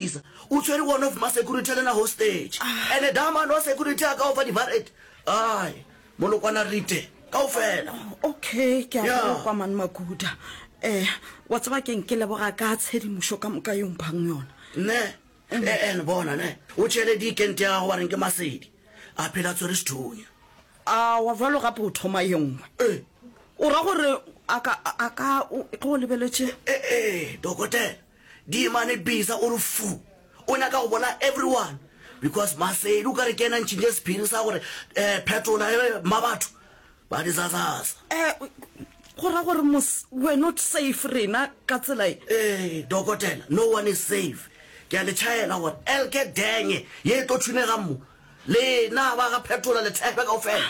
Isa o tshwere one of ma security le na hostage ene da man wa security a ka o fa di barret ai molokwana rite ka o fela okay ke a Yeah. go kwa man makuda eh wa tseba keng ke leboga ka tshedimošo ka moka yong phang yona ne e ene bona ne o tšhele dikente ya gago wa reng ke masedi a phela tshwere sethunya a wa jalo gape o thoma ye nngwe Eh. o ra gore a ka a ka o tlo o lebeletše ee dokotela Diemane bisa o re fu. O nyaka go bolaya everyone because Maseli o ka re ke yena a ntšhintše sephiri sa gore um phetola he Mmabatho ba di zazaza. Um go ra gore mos we're not safe rena ka tsela e. Ee dokotela no one is safe. Ke a le tšhaela gore elke denge ye e tlo thunegang mo, lena ba ga phetola le thekgwe kaofela.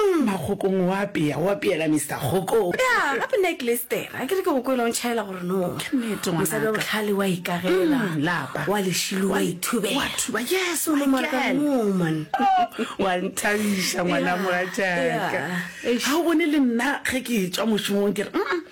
Mma Kgokong o apea, o apeela Mister Kgokong. Ya, gape nna ke Lester, a ke re ke go kwele o ntšhaela gore no. Ke nnete ngwanaka. Mosadi wa bohlale o a ikagela. Umm, lapa. O a lešilo, o a ithubela. O a thuba, yes, my girl. Ka moo, man. Oh, wa nthabiša ngwana mogatšaka. Yeah, yeah. Eish. Ga o bone le nna ge ke tšwa mošomong ke re, umm,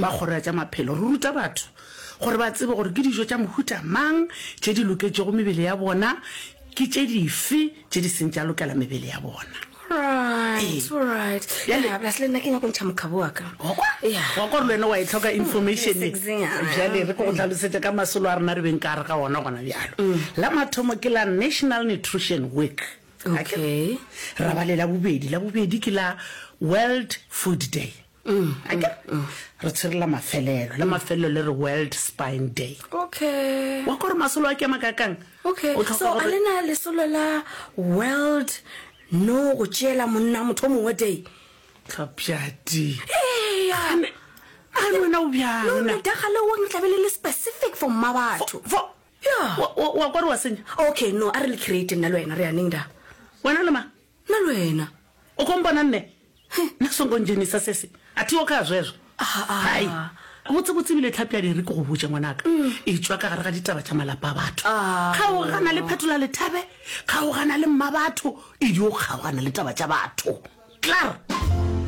ba Kgoro ya tša Maphelo, re ruta batho gore ba tsebe gore ke dijo tša mohuta mang tše di loketšego mebele ya bona, ke tše dife tše di seng tša lokela mebele ya bona. Right, Ee. right. Bjale- Yeah, plus le nna ke nyako ntšha mokgabo wa ka. Wa kwa? Yeah. Wa kwa gore le wena wa e tlhoka information e. Sexing-nyana. Bjale re ko go tlhalosetša ka masolo a rena re beng ka gare ga ona gona bjalo. La mathomo ke la National Nutrition Week. Okay. Ra ba le la bobedi. La bobedi ke la World Food Day. Umm, akere? Re tshwere la mafelelo, la mafelelo le re World Spine Day. Okay. Wa kwa gore masolo a ke makakang? Okay, so a le na lesolo la World No go tšeela monna motho mongwe day? Tlhapjadi. Hey, a re wena o bjang no na daga le wong tla be le le specific for mma batho fo ya wa kwa re wa senya okay no a re le create nna le wena re ya neng da wena le ma Nna lwena. O ko mpona nne? Nna songo ndzhenisa sesi. A thi wo kha zwezwo. Hai. Botse-botse ebile Tlhapi a diri ke go botše ngwanaka. E tšwa ka gare ga ditaba tša malapa a batho. Kgaogana le Phetola Lethabe, kgaogana le Mmabatho, e di o kgaogana le taba tša batho. Klaar!